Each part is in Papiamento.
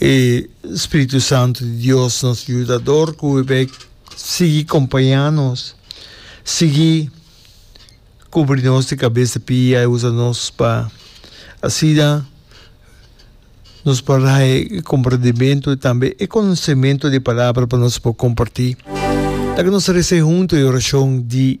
E Spiritu Santu di Dios, nos yudador, ku e bek sigui kompañá nos, sigui kubri nos di kabes di pia, e usa nos pa asina nos por hay e komprendimentu i tambe e konosementu di e palabra pa nos por kompartí. Laga nos rese huntu e orashon di.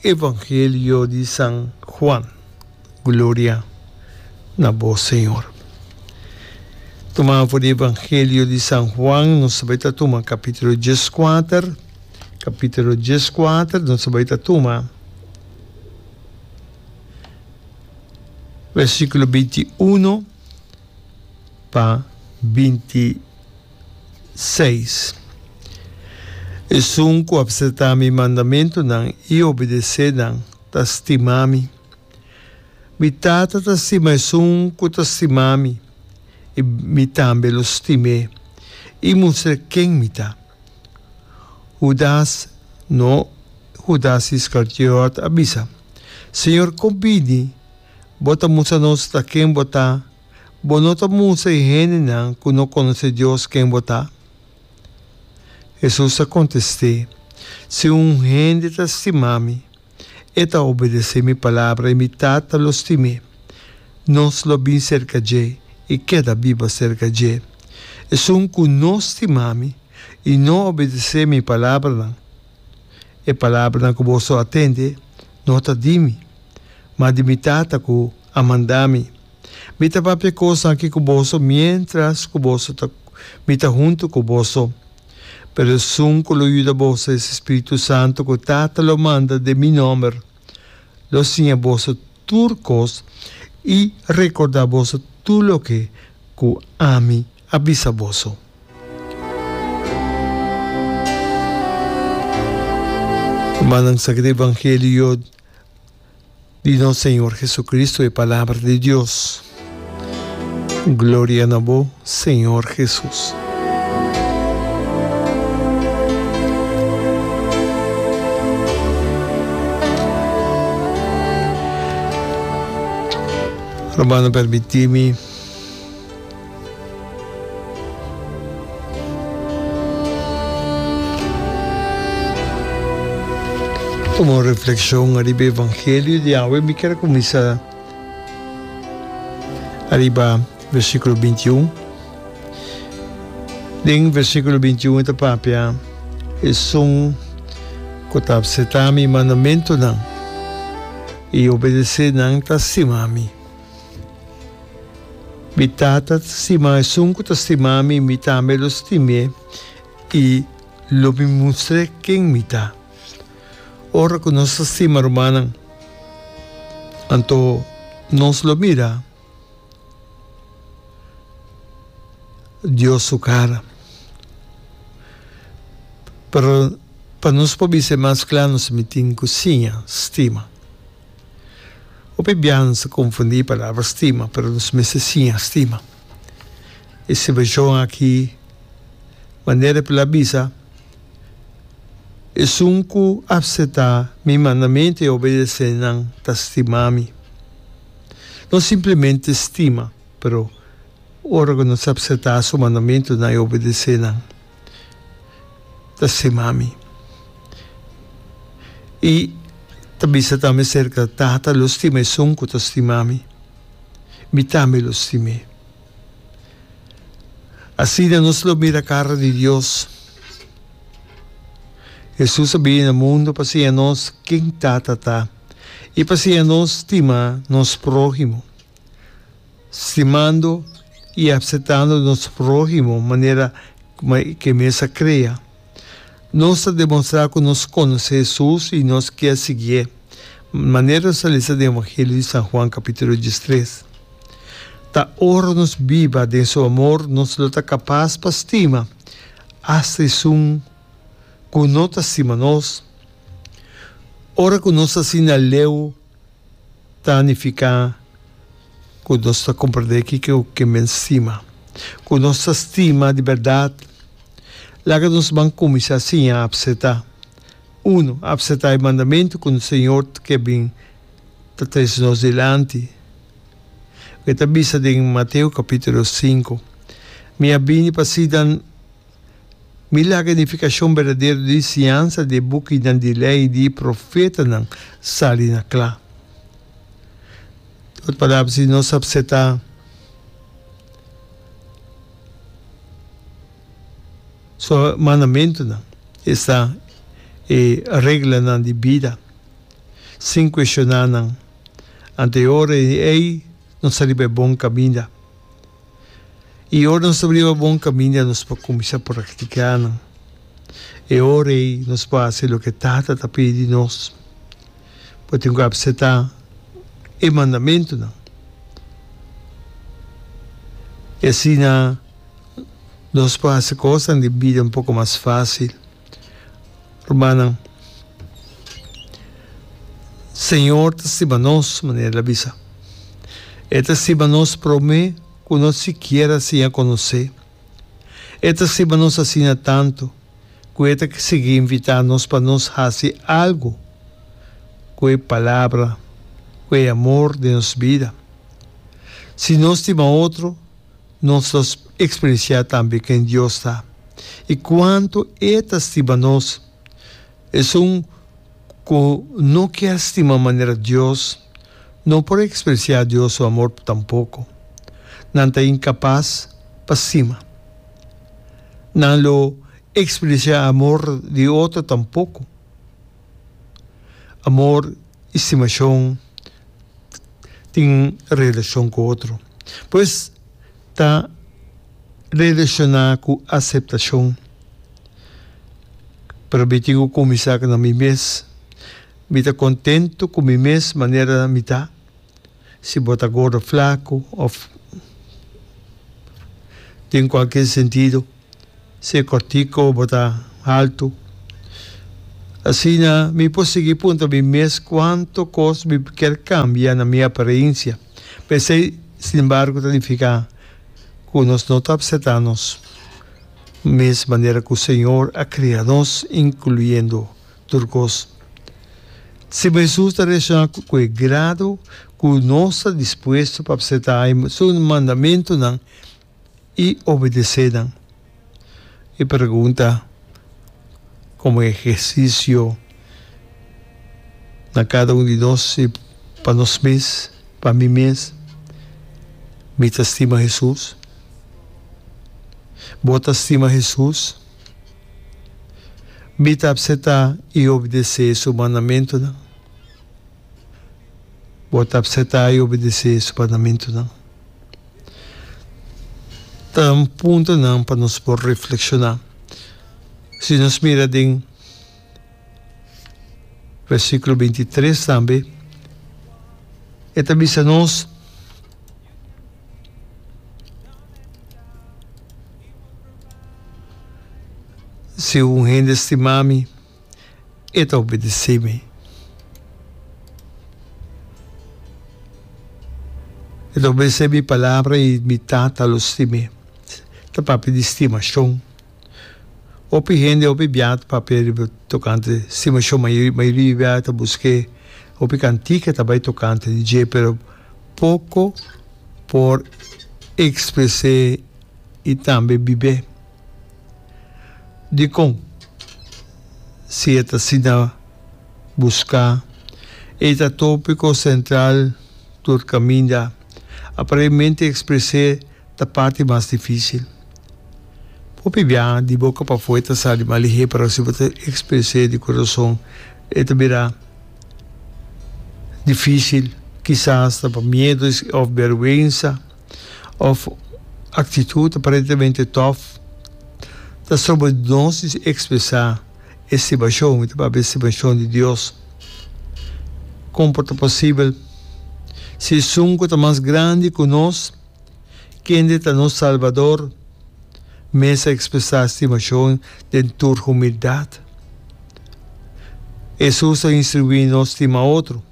Evangelio di San Juan. Gloria na bo Señor. Tuma afo di Evangelio di San Juan nos ta bai ta tuma capitulo diescuater, capitulo diescuater nos ta bai ta tuma versiculo binti uno pa binti seis. Esun ku apseta mi mandamentunan i obedesé nan ta stima mi. Mi Tata ta stima esun ku ta stima mi, i mi tambe lo stim'é i mustra ken mi ta. Hudas, no Hudas Iskartiot, a bisa, Señor, kon bini bo ta mustra nos ta ken bo ta Bo no ta mustra e hendenan ku no konosé Dios ken bo ta? Hesus a kontest'é, Si un hende ta stima mi, e ta obedesé mi palabra, i mi Tata lo stim'é. Nos lo bin serka dje i keda biba serka dje. Esun ku no stima mi i no obedesé mi palabranan, e palabranan ku boso a tende no ta di mi, ma di mi Tata ku a manda mi. Mi ta papia cos aki cu boso mientras cu boso ta Mi ta hunto cu boso. Pero esun cu lo yuda boso es Espiritu Santo cu Tata lo manda den Mi nomber. Lo siña boso tur cos y recorda boso tur loke cu Ami a bisa boso. Humannan sa ke ta evangelio yo. Di nos Señor Jesucristo e palabra di Dios. Gloria na bo Señor Jesus. Hermano permitimi. Como un reflexion ariba e evangelio di awe mi kier a cuminsa ariba versiculo binti un. Den versiculo binti un e ta papia esun cu ta abseta mi mandamentonan y obedece nan ta stima mi. Mi tata ta stima esun ku ta stima mi, mi tambe lo stim'é i lo mi mustr'é ken mi ta. Ora ku nos ta stima rumannan, anto nos lo mira Dios su kara. Pero pa nos por bisa mas kla nos mitin ku siña stima. Hopi biaha ta konfundí palabra stima, pero nos mester siña stima. E situashon akí, manera ku el a bisa, esun ku apseptá mi mandamentu i a obedesé nan ta stimá mi. No simplemente stima, pero ora ku nos apseptá su mandamentunan i obedesé nan. ta stima mi. I ta bisa tambe aserka, Tata lo stima esun ku ta stima mi, mi tambe lo stim'é. Asina nos lo mira kara di Dios. Hesus a bini na mundu pa siña nos ken Tata ta i pa siña nos stima nos próhimo. Stimando y apsetando nos prohimo manera ke mes a krea, nos ta demonstra ku nos konosé Jesus y nos kier siguié, manera nos a lesa den Evangelio di San Juan kapitulo diestres. Ta ora nos biba den su amor nos lo ta kapas pa stima hasta esun ku no ta stima nos. Ora ku nos asina leu. ta nifiká ku nos ta komprendé kiko ke men stima. Ku nos ta stima di bèrdat, laga nos ban kuminsá siña apsetá. Unu, apsetá e mandamentu ku nos Señor ke bin ta tres nos dilanti. E ta bisa den Mateo kapítulo sinku, Mi a bini pa si nan Mi laga e nifikashon berdadero di e siñansa di e bukinan di lei i di e profetanan sali na kla. Na otro palabra, si nos a apseta su mandamentunan, esta e reglanan di bida, sin kuestioná nan, anto e ora ei nos a riba e bon kaminda. I ora nos ta bliba bon kaminda nos por kuminsá praktiká nan. E ora ei nos por hasi loke Tata ta pidi di nos. Bo tin ku apseptá e mandamentunan. I asina nos por hasi kosnan di bida un poko mas fásil. Rumannan, Señor ta stima nos manera el a bisa. E ta stima nos promé cu no sikiera a siña conocé. E ta stima nos asina tantu cu e ta sigui invitá nos pa nos haci algu cu e Palabra, cu e amor den nos bida. Si nos stima otro, nos ta eksperensiá tambe ken Dios ta i kuantu E ta stima nos. Esun ku no kier stima manera Dios, no por eksperensiá Dios su amor tampoko. Nan ta inkapas pa stima. Nan lo eksperensiá amor di otro tampoko. Amor Estimashon tin relashon ku otro. Pues ta relashoná ku aseptashon. Pero mi tin ku kuminsá na mi mes. Mi ta kontentu ku mi mes manera mi ta. Si bo ta gordo, flaku òf tin kualkier sentido, si e kòrtiko, bo ta haltu. Asina mi por sigui punta mi mes kuantu kos mi kier kambia na mi aparensia. Pero esei sin embargo ta nifiká ku nos no ta apsetá nos mes manera ku Señor a krea nos, inkluyendo. tur kos. Sin bo Hesus ta reakshona ku e grado ku nos ta dispuesto pa apseptá e su mandamentunan i obedesé nan. E pregunta, komo ehersisio na kada un di nos i pa nos mes, pa mi mes, Mi ta stima Hesus? Bo ta stima Hesus? Mi ta apseta i obedesé su mandamentunan. Bo ta apseta i obedesé su mandamentunan? Ta un puntonan pa nos por reflekshoná. Si nos mira den. Versíkulo binti i tres tambe e ta bisa nos, Si un hende stima mi, e ta obedesé mi. E ta obedesé mi palabra i mi Tata lo stim'é. Ta papia di stimashon. Hopi hende, hopi biaha papia riba tokante stimacion. Mayoria biaha ta busqué hopi cantica ta bay tokante di dje, pero poco por expresé y tambe bibé. Dicon? Si e ta asina busca, e ta topico central tur caminda. Aparemente expresé. Ta parti mas dificil. Hopi bia di boca pafue ta sa di malihé pero si bo ta expres'é di corazon e ta bira dificil, kisa asta pa miedo of berwensa of actitud aparentemente tof ta stroba nos di expresa estimashon, mi ta papia estimashon di Dios. Como por ta posibel si esun cu ta mas grandi cu nos Kende ta nos Salbador? Mes a ekspresá stimashon den tur humildat. Hesus a instruí nos stima otro.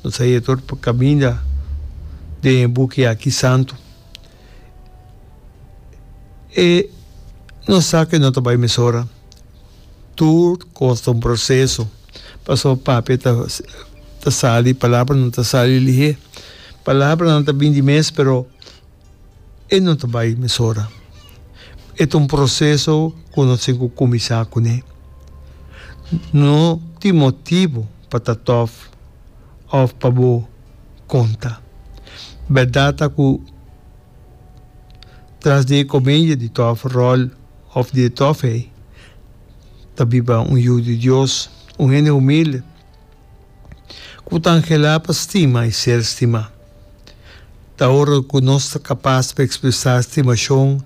Nos a yega tur pa kaminda den e buki aki santu. E nos sa ke no ta bai mesora. Tur cos ta un proceso. Pasobra Papia ta ta sali, palabranan ta sali lihé. Palabranan ta bindi mes, pero e no ta bai mesora. E ta un proceso cu nos tin cu cuminsa cun'é. No tin motibu pa ta tof of pa bo conta. Berdad ta cu tras di e comedia di tof rol, òf di e tòfia ei, ta biba un yu di Dios, un hende humilde ku ta anhelá pa stima i ser stimá. Ta ora ku nos ta kapas pa ekspresá stimashon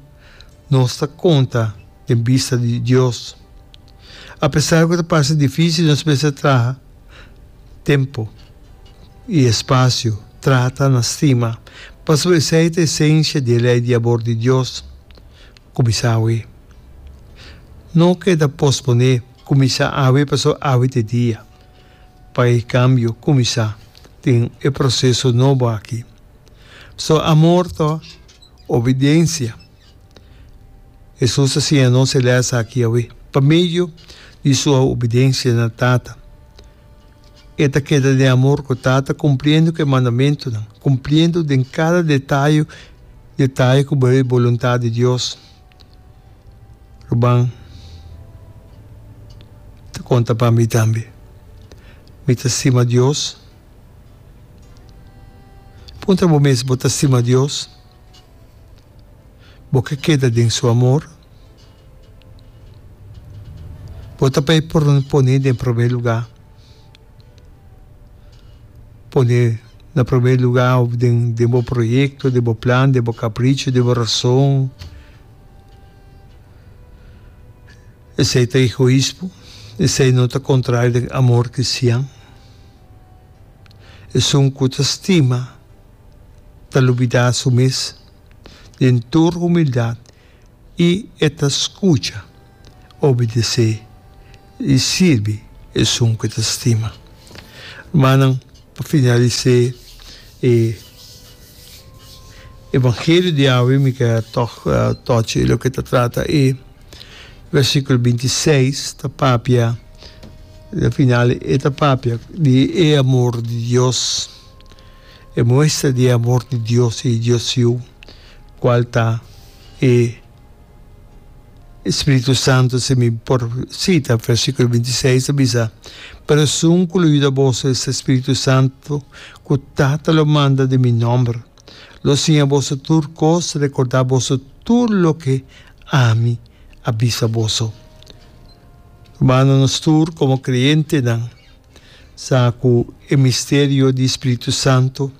nos ta konta den bista di Dios. Apesar ku ta parse difísil, nos mester traha tempu i espasio trata na stima, pasobra esei ta esensia di e lei di abor di Dios. ku bisa awe. No keda posponé kuminsá awe paso awe ta e dia pa e kambio kuminsá den e proseso nobo aki. So amor ta obidensia. Hesus a siña nos e lès aki awe pa medio di su obidensia na Tata. E ta keda den amor ku Tata, kumpliendo ku e mandamentunan, kumpliendo den kada detayu detayu ku bai e boluntat di Dios. Ruben ta konta pa mi tambe, Mi ta stima Dios. Puntra bo mes, Bo ta stima Dios? Bo ke keda den su amor? Bo ta bay por pone den prome luga. Pone na prome luga of den den bo proyecto, den bo plan, den bo capricho, den bo razon. Esey ta egoismo, esey no ta contrario den amor cristian. Esun cu ta stima ta lubida su mes den tur humildad. i e ta skucha, obedesé i sirbi esun ku e ta stima. Rumannan, pa finalis'é e Evangelio di awe mi kere tòg tòchi loke ta trata e versikulo binti i seis, ta papia, al final e ta papia di e amor di Dios. E muestra di e amor di Dios i Dios Su Yu, kual ta e Spiritu Santu, si mi por sita versikulo binti seis, ta bisa, Pero esun ku lo yuda boso es e Spiritu Santu ku Tata lo manda den mi nòmber. Lo siña boso tur kos, rekordá boso tur loke ami a bisa boso. Rumannan, nos tur komo krientenan, sa ku e misterio di spiritu santu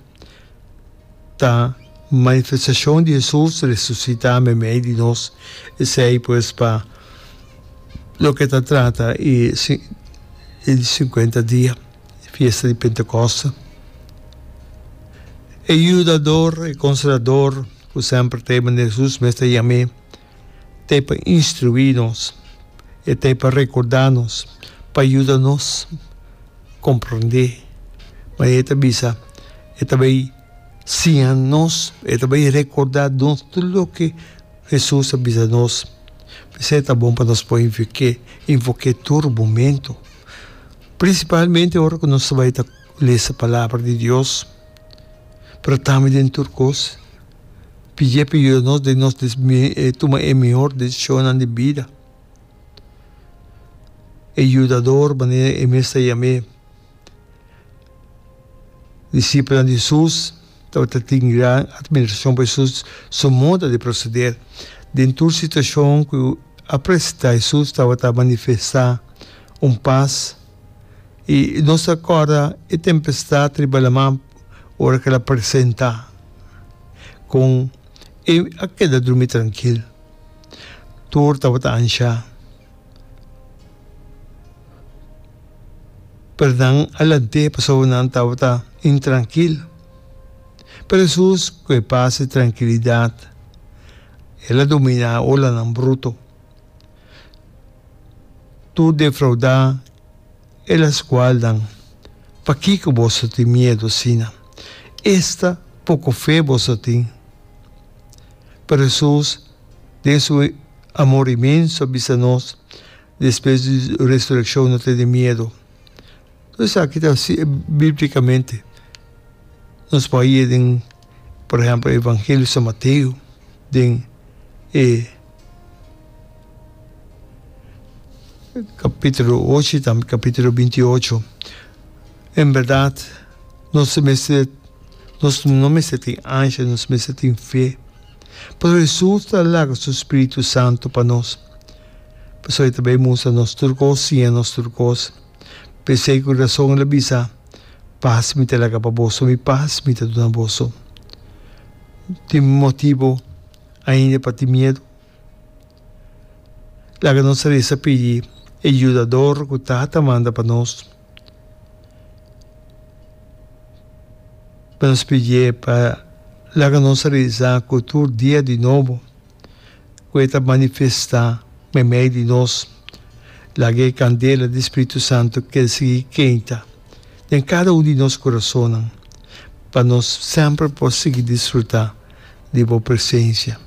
ta manifestashon di Hesus resusitá meimei di nos. Esei pues pa loke ta trata e e sinkuenta dia, e fiesta di Pentekoste. E yudador, e konsolador ku semper ta e manera Hesus mes ta yam'é. ta e pa instruí nos, e ta e pa rekordá nos, pa yuda nos komprondé. Ma e ta bisa, e ta bai siña nos, e ta bai rekordá nos tur loke Hesus a bisa nos. P'esei ta bon pa nos por invoké, invoké tur momentu, prinsipalmente ora ku nos ta bai ta lesa Palabra di Dios, pero tambe den tur kos, P'iepe yuda nos den nos tuma e mihor decisionnan di bida. E Yudador, manera e mes ta yam'é. Disipelnan di Hesus tabata tin gran admiracion pa Hesus su moda di proceder. Den tur situacion cu a presenta, Hesus tabata manifesta un pas. I nos ta corda e tempestad riba laman. ora ke la presenta kon e a keda drumi trankil tur tabata anshá pero nan a lant'é pasobra nan tabata intrankil. Pero Hesus ku e pas i trankilidat el a dominá e olanan bruto tur defraudá. El a scualnan, Pakico boso tin miedo asina? Esta poco fe boso tin! Pero Jesús, den su amor inmenso, a bisa nos, Despues di resureccion no tene miedo. Tur esaki ta biblicamente. Nos por haya den, por ehempel, Evangelio San Mateo, den e. Capitulo ocho y tambe capitulo bintiyocho. En berdad, nos no mester, nos no mester tin angsha, nos mester tin fe. Pasobra Jesús ta laga su Spiritu Santu pa nos. Pasobra e ta bay mustra nos tur cos, siña nos tur cos. P'esey cu rason el a bisa, Paz mi ta laga pa boso, mi paz mi ta duna boso. Tin motibo. ainda e pati miedu. Laga nos resa pidi e yudador ku ta ta manda pa nos, pa nos pidi e pa laga nos resa ku tur dia di nobo ku e ta manifesta meimei di nos. Laga e kandela di spritu santu kel sigui kenta den kada un di nos kurasonnan pa nos semper por sigui disfrutá. di bo presencia.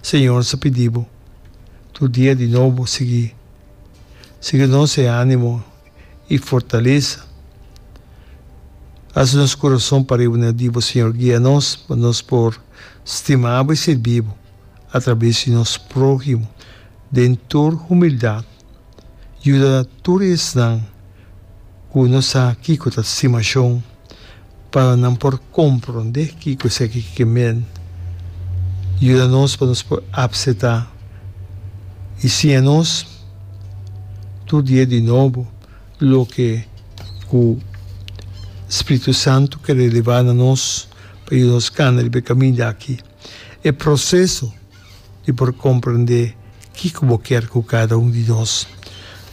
Señor sa pidi bo tur dia di nobo sigui sigui nos e animo y fortalesa. Haci nos corazon pariba na di bo Señor. Guia nos pa nos por stima bo y sirbi bo a traves di nos prohimo den tur humildad. Yuda tur esnan cu nos sa kico ta stimacion. pa nan por komprondé kiko esaki ki ke men. Yuda nos pa nos por apsetá i siña nos tur dia di nobo loke ku spritu santu ke relevá na nos pa yuda nos kanda riba e kaminda akí. E proseso. di por comprende kico bo kier cu cada un di nos.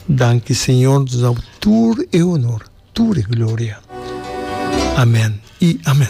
Danki Señor, nos a bo tur e honor, tur e gloria. Amen y amen.